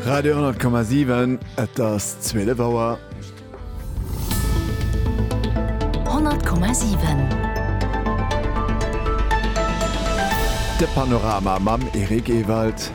Radio 10,7 et ass 12 Auer. 10,7 De Panorama mam Erik Ewald.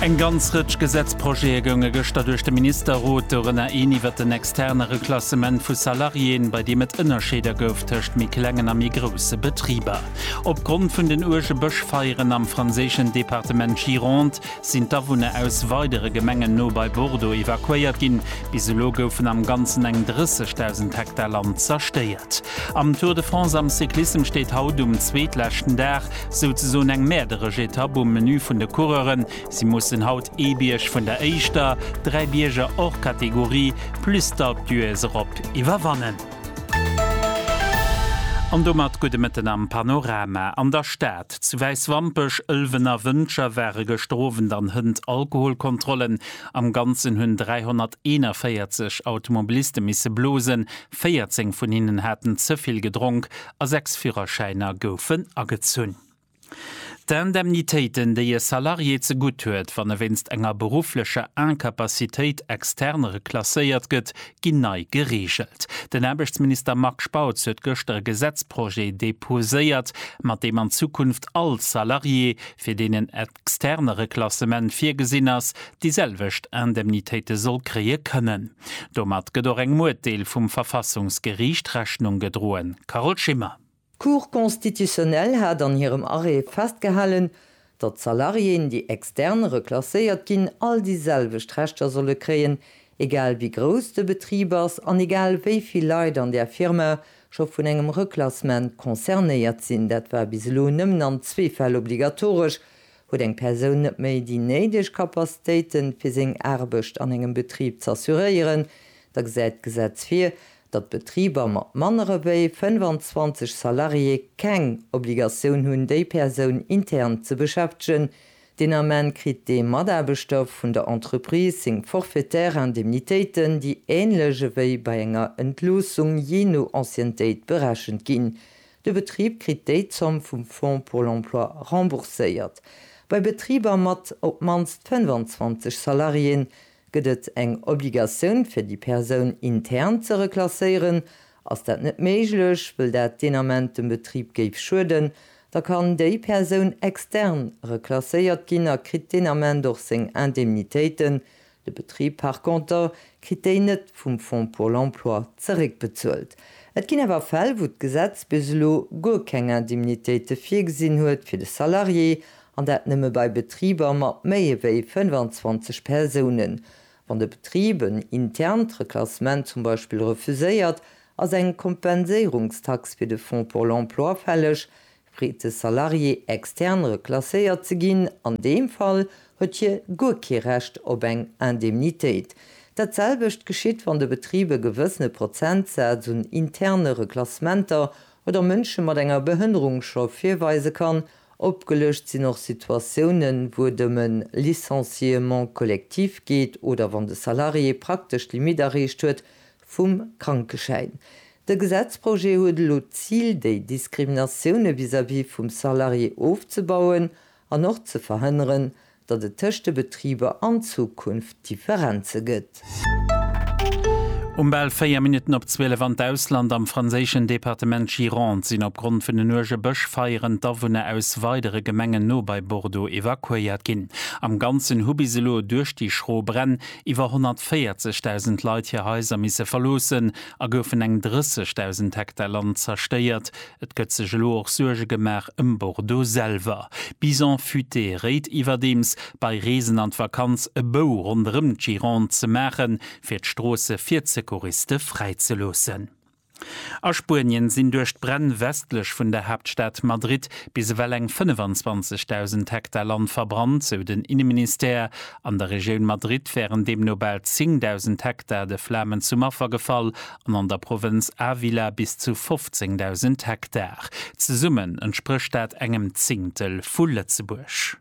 Eng ganz Rëtsch Gesetzprojete gounge gëschter duerch de Ministerrot, dorënner een iwwer den externe Reklassement vu Salariéen, bei deem et Ënnerscheeder gouf tëscht méi klengen a méi grousse Betriber. Opgrond vun den uerge Bëschfeieren am franséischen Departement Gironde sinn d'Awunner aus weidere Gemengen no bei Bordeaux evakuéiert ginn. Bis elo goufen am Ganzen eng 30.000 Hektar Land zerstéiert. Am Tour de France am Cyclissem steet haut um zweetleschten Dag souzesoen eng mäerderesch Etapp um Menü vun de Coureuren. Si mussen haut ee Bierg vun der éischter dräi Bierger hors catégorie plus d'Alpe d'Huez erop iwwerwannen. An domat gudde Mëtten am Panorama. An der Stad, zu Wäiswampech, Ëlwen a Wëntger ware gëschter Owend an Hënt Alkoholkontrollen. Am Ganzen hunn 341 Automobiliste misse blosen, 14 vun hinnen haten ze vill gedronk a sechs Führerschäiner goufen agezunn. D'Indemnitéiten, déi e Salarié zegutt huet, wann e wéinst enger berufflecher Incapacitéit extern reklasséiert gëtt, ginn nei gereegelt. Den Aarbechtsminister Marc Spautz huet gëschter e Gesetzprojet deposéiert, mat deem an Zukunft all Salarié, fir deen en externe Reklassement virgesinn ass, déi selwecht Indemnitéite soll kréie kënnen. Domat gëtt och engem Urteel vum Verfassungsgeriicht Rechnung gedroen. Carole Schimmer. D'Cour constitutionnelle hat an hirem Arrêt festgehalen, datt Salariéen, déi extern reklasséiert ginn, all déi selwecht Rechter solle kréien, egal wéi grouss de Betrib ass an egal wéi vill Leit an där Firma scho vun engem Reklassement concernéiert sinn. Dat war bis elo nëmmen an zwee Fäll obligatoresch, Huet eng Persoun net méi déi néideg Capacitéiten, fir seng Aarbecht an engem Betrib z'assuréieren, da gesäit d'Gesetz vir, datt Betriber mat mannere wéi 25 Salarié keng Obligatioun hunn déi Persoun intern ze beschäftegen, deen Ament kritt dee Mataarbechter vun der Entreprise seng forfaitaire Indemnitéiten, déi änlech ewéi bei enger Entloossung jee no Anciennetéit berechent ginn. De Betrib kritt déi Zomm vum Fonds pour l'emploi rembourséiert. Bei Betriber mat op d'mannst 25 Salariéen Gëtt et eng Obligatioun fir déi Persoun intern ze reklasséieren? Ass dat net méiglech, wëll dat deen Ament dem Betrib géif schueden, da kann déi Persoun extern reklasséiert ginn a kritt deen Ament och seng Indemnitéiten, de Betrib par conter kritt déi net vum Fonds pour l'emploi zeréckbezuelt. Et ginn awer Fäll wou d'Gesetz bis elo guer keng Indemnitéite virgesinn huet fir de Salarié An dat nëmme bei Betriber mat méi ewéi 25 Persounen. Wann de Betrib en internt Reklassement zum Beispill refuséiert, ass eng Kompenséierungstax fir de Fonds pour l'emploi fälleg, freet de Salarié extern reklasséiert ze ginn. An deem Fall huet hie guer kee Recht op eng Indemnitéit. Dat selwecht geschitt, wann de Betrib e gewëssene Prozentsaz un interne Reklassementer oder Mënsche mat enger Behënnerung scho virweise kann, Opgelëscht sinn och Situatiounen, wou et ëm e Licenciement collectif geet oder wann de Salarié praktesch d'Limit erreecht huet vum Krankeschäin. De Gesetzprojet huet elo d'Zil, déi Diskriminatioune vis-à-vis vum Salarié ofzebauen an och ze verhënneren, datt et tëscht de Betriber an Zukunft Differenze gëtt. Um bal 4 Minutten op 12 an d'Ausland, Am franséischen Departement Gironde sinn opgrond vun den uerge Bëschfeieren d'Awunner aus weidere Gemengen no bei Bordeaux evakuéiert ginn. Am Ganzen hu bis elo duerch déi schro Bränn iwwer 140.000 Leit hir Haiser misse verloossen a goufen eng 30.000 Hektar Land zerstéiert, Et gëtt sech elo och Suerge gemaach ëm Bordeaux selwer. Bison Futé réit iwwerdeems, bei Reesen an d'Vakanz e Bou ronderëm d'Gironde ze maachen, fir d'Stroosse fir d'Secouriste fräi ze loossen. A Spuenien sinn duerch d'Bränn westlech vun der Haaptstad Madrid bis ewell eng 25.000 Hektar Land verbrannt, sou den Inneministère. An der Regioun Madrid wären deemno bal 10.000 Hektar de Flamen zum Affer gefall an an der Provënz Ávila bis zu 15.000 Hektar. Zesummen entsprécht dat engem Zingtel vu Lëtzebuerg.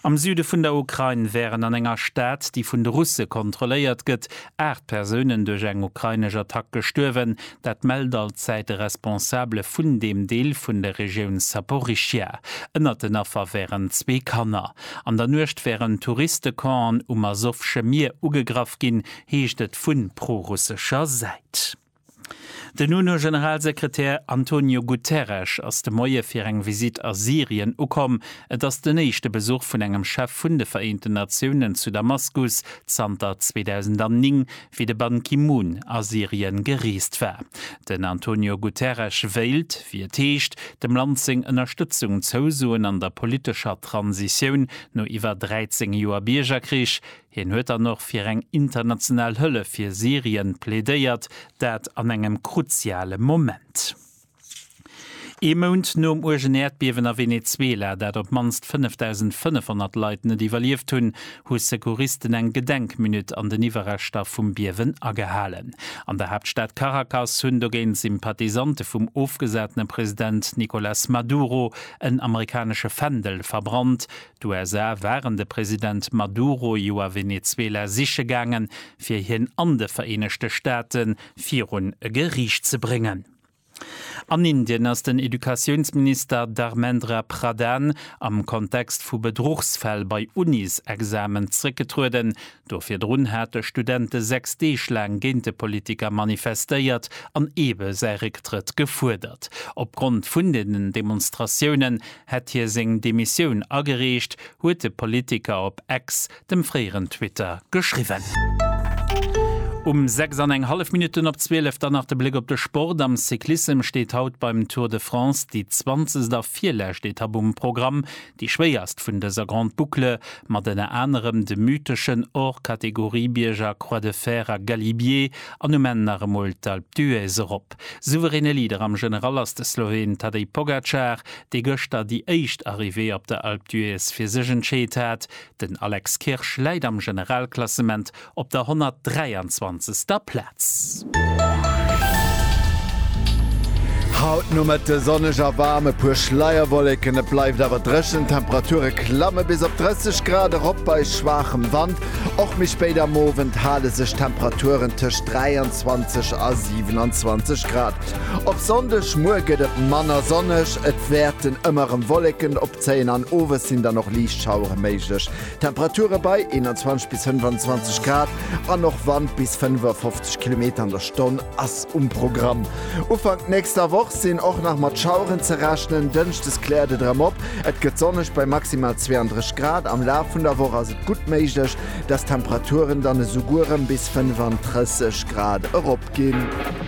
Am Süde vun der Ukrain wären an enger Stad, déi vun de Russe kontrolléiert gëtt, aacht Persounen duerch eng ukrainesch Attack gestuerwen. Dat mellt alt Zäit e Responsabele vun deem Deel vun der Regioun Saporischschja. Ënnert den Affer wären zwee Kanner. An der Nuecht wären Touristecampen um Asowsche Mier ugegraff ginn, heescht et vu prorussescher Säit. Den UNO-Generalsekretär Antonio Guterres ass de Moie fir eng Visitt a Syrien ukomm. Et ass den éischte Besuch vun engem Chef vun de Vereenten Natiounen zu Damaskus zanter 2009, wéi de Ban Ki-moon a Syrien gereest war. Den Antonio Guterres wéilt, wéi et heescht, dem Land seng Ënnerstëtzung zousoen an der politescher Transitioun no iwwer 13 Joer Biergerkrich. Hien huet dann och fir eng international Hëllef fir Syrien plädéiert, dat an engem kruziale Moment. Ee Mount nom uergen Äerdbiewen a Venezuela, dat op d'mannst 5.500 Leit net iwwerlieft hunn, hu Secouristen eng Gedenkminutt an den Iwwerreschter vum Biewen agehalen. An der Haaptstad Caracas hunn dogéint Sympathisante vum ofgesatene President Nicolas Maduro en amerikanesche Fändel verbrannt, D'USA waren de President Maduro jo a Venezuela siche gaangen, fir hien an de Vereenegte Staate virun e Geriicht ze bréngen. An Indien ass den Educatiounsminister Dharmendra Pradhan am Kontext vu Bedruchsfäll bei Unis-Examen zréckgetrueden, Do virdrun hate Studente 6 Deeg laang géint de Politiker manifestéiert an eebe säi Récktrëtt gefuerdert. Opgrond vun deenen Demonstratiounen hätt hie seng Demissioun agereecht, huet de Politiker op Ex, dem fréieren Twitter, geschriwwen. Um 6 an eng hallef Minutten op 12, dann nach de Bléck op de Sport. Am Cyclissem steet haut beim Tour de France déi 20. a virlescht Etapp um Programm. Déi schwéierst vun dëser Grande Boucle, mat ënner anerem de mytheschen Hors-Catégorie-Bierger Croix de Fer a Galibier an um Enn nach emol d'Alpe d'Huez erop. Souveräne Leader am General ass de Sloween Tadej Pogacar, dee gëschter déi éischt Arrivée op der Alpe d'Huez fir sech entscheet hat. Den Alex Kirsch läit am Generalklassement op der 123. Plaz. Haut Nomëtte sonneg a waarm, e puer Schleierwolleken, et bleift awer dréchen. D'Temperature klamme bis op 30 Grad erop bei schwaachem Wand. Och méi spéit am Owend hale sech d'Temperaturen tëscht 23 a 27 Grad. Op Sonndeg muer gëtt et manner sonneg, et wäerten ëmmer erëm Wolleken op zéien an owes sinn dann och liicht Schauere méiglech. Temperature bei 21 bis 25 Grad an och Wand bis 55 Kilometer an der Stonn ass um Programm. Ufank nächster Woch sinn och nach mat Schaueren ze rechnen, Dënschdes kläert et erëm op, et gëtt sonneg bei maximal 32 Grad. Am Laf vun der Woch ass et gutt méiglech, dass d'Temperaturen dann esouguer erëm bis 35 Grad eropginn.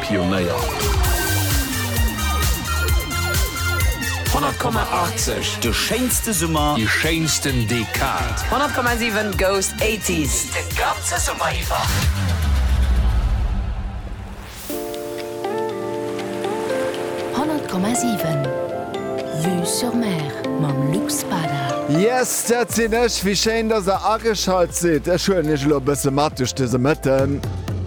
Pionéier. 100,80, De schéinste Summer. Déi schéinsten Dekad. 100,7, Goes 80s, De ganze Summer iwwer. Yes, dat sinn ech! Wéi schéin, dass der ageschalt sidd. Ech huelen iech elo e bësse mat duerch dëse Mëtten.